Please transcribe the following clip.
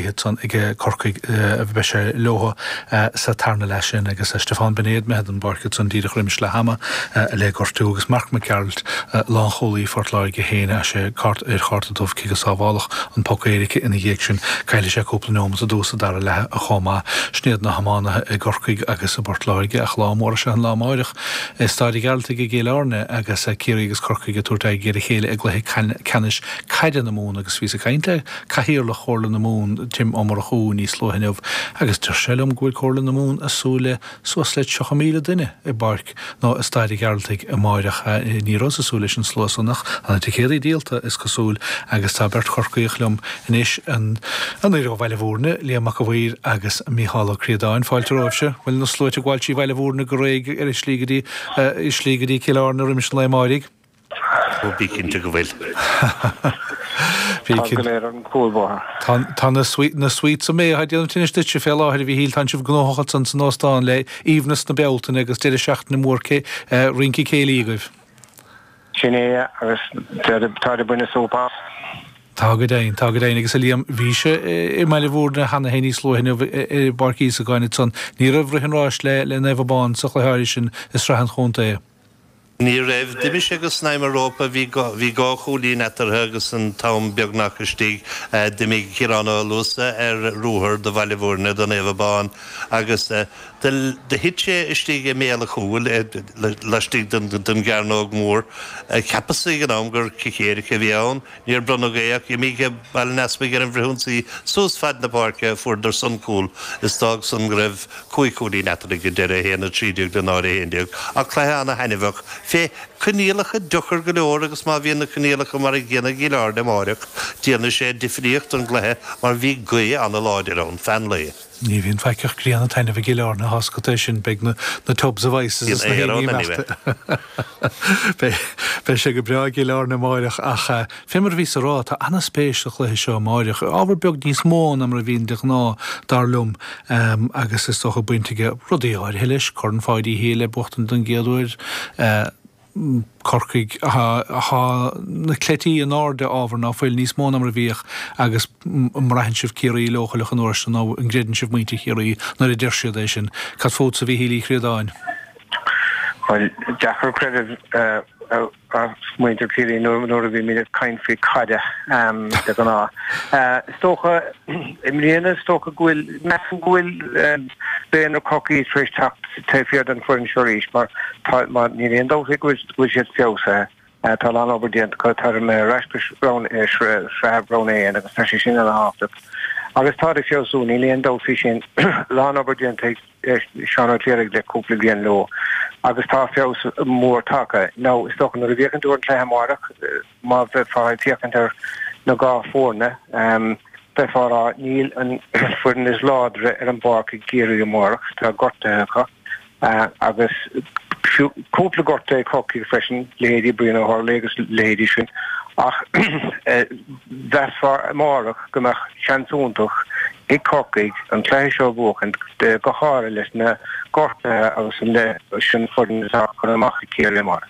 gaoth san ag Corcaigh beidh sé leotha sa tarna leath sin agus Stiofán Binéid imithe den bpáirc ansan díreach roimis leath ama le gortú agus Mark Mac Gearailt lánchúlaí Phort Láirge fuair sé cárta ar chárta dubh cé gur sábháladh an poc éirice ina dhiaidh sin caillfidh sé cúpla neomat i dtús an dara leath chomh maith. Sin iad na hiománaithe i gCorcaigh agus i bPort Láirge ach lá mór is ea an lá amáireach i Staid an Ghearaltaigh i gCill Airne agus Ciarraí agus Corcaigh ag tabhairt aghaidh ar a chéile i gcluiche ceannais caide na Mumhan agus bhíos ag caint le Cathaoirleach Chomhairle na Mumhan, Tim Ó Murchú, níos luaithe inniu agus dúirt sé liom go bhfuil Comhairle na Mumhan ag súil le suas le 30,000 duine i bPáirc nó i Staid an Ghearaltaigh amáireach. Ní rabhas ag súil leis an slua san ach tá na ticéadaí díolta, is cosúil, agus tá beirt Chorcaíoch liom anois, anoir ó Bhaile Bhúirne, Liam Mac a' Mhaoir agus Mícheál Ó Críodáin. Fáilte romhaibhse. Bhuel, na sluaite ag gabháil trí Bhaile Bhúirne go réidh ar a slí go dtí Cill Airne roimis an lae amáirigh. Ó, bí cinnte go bhfuil. Tá go léir ar an chúlbhóthar. Tá na sweets a mbeidh á déanamh anois duitse fé láthair a Mhíchíl, tá sibh gnóthach ansan san óstán le hAoibhneas na Bealtaine agus deireadh seachtaine mór rince céilí agaibh. Sin é agus táid ag baint súp as. Tá go deimhin, tá go deimhin. Agus a Liam, bhís i mBaile Mhúirne cheana féin níos luaithe inniu i bPáirc Íosagáin ansan. Ní raibh rith an ráis le Naomh Abán sa chluiche áirithe sin i Sraith an Chontae. Ní raibh. D'imigh sé go snaidhm an rópa, bhí dhá chúilín eatarthu agus an t-am beagnach istigh, d'imigh Ciarán Ó Luasa ar ruathar do Bhaile Bhuirne, do Naomh Abán agus do thit sé istigh i mbéal an chúil, laistigh den gcearnóg mhór. Cheapas ag an am gur cic éirice a bhí ann. Níor bronnadh é ach d'imigh Baile an Easpaig ar an bhfrithionsaí suas faid na páirce fuaireadarsan cúl is d'fhág san go raibh cúig chúilín eatarthu ag deireadh 1, 13 le 0, 11. Ach cluiche ana-thaithneamhach fé coinníollacha deocair go leor agus má bhíonn na coinníollacha mar a gcéanna i gCill Airne amáireach déanfaidh sé difríocht don gcluiche mar bhí gaoth ana-láidir ann feadh an lae. Ní bhíonn faic ach grian ag taitneamh i gCill Airne tá a fhios agat é sin, beidh na tubs of ice is na héiníní imeachta. Beidh sé go breá i gCill Airne amáireach ach fé mar a bhíos ag rá tá an-spéis sa chluiche seo amáireach, ábhar beag níos mó ná mar a bhíonn de ghnáth dar liom agus is dócha baint aige rudaí áirithe leis, Corn Pháidí Uí Shé le buachtaint den gcéad uair, Corcaigh. Tá na cleití in airde ábhar ná fuil, níos mó ná mar a bhíodh agus an mbraitheann sibh Ciarraí leochaileach an uair seo nó an gcreideann sibh muintir Chiarraí nuair a deir siad é sin? Cad fútsa a Mhíchíl Uí Chríodáin? Bhuel, deacair creideamh i muintir Ciarraí nuair a bhímid ag caint faoi caide de ghnáth. Is dócha i mbliana is dócha go bhfuil measaim go bhfuil daonra Corcaí tar éis teacht Taobh thiar den foireann seo arís, mar tá, mar níl aon dabht faoi go bhfuil, go bhfuil siad feabhsaithe, tá a lán obair déanta acu, tá ar ar ais go roinn, sreabh roinn a haon agus tá sé sin ana-thábhachtach agus táid ag feabhsú, níl aon dabht faoi sin. lán obair déanta ag Seán Ó Cléirigh le cúpla bliain leo agus tá feabhas mór tagtha. Now, is dócha nuair a bhíodh ag féachaint ar an gcluiche amáireach, Má bheifeá ag féachaint ar na dhá foirne, bheifeá ag rá, níl an foireann is láidre ar an bpáirc ag Ciarraí amárach, tá gortuithe acu agus fiú cúpla gortú ag Corcaigh freisin, leithéidí Brian Ó hUrthuile agus leithéidí sin, ach mheasfá amárach go mbeadh seans iontach ag Corcaigh an cluiche seo a bhuachaint, go háirithe leis na gortuithe agus leis an foireann atá curtha amach ag Ciarraí amárach.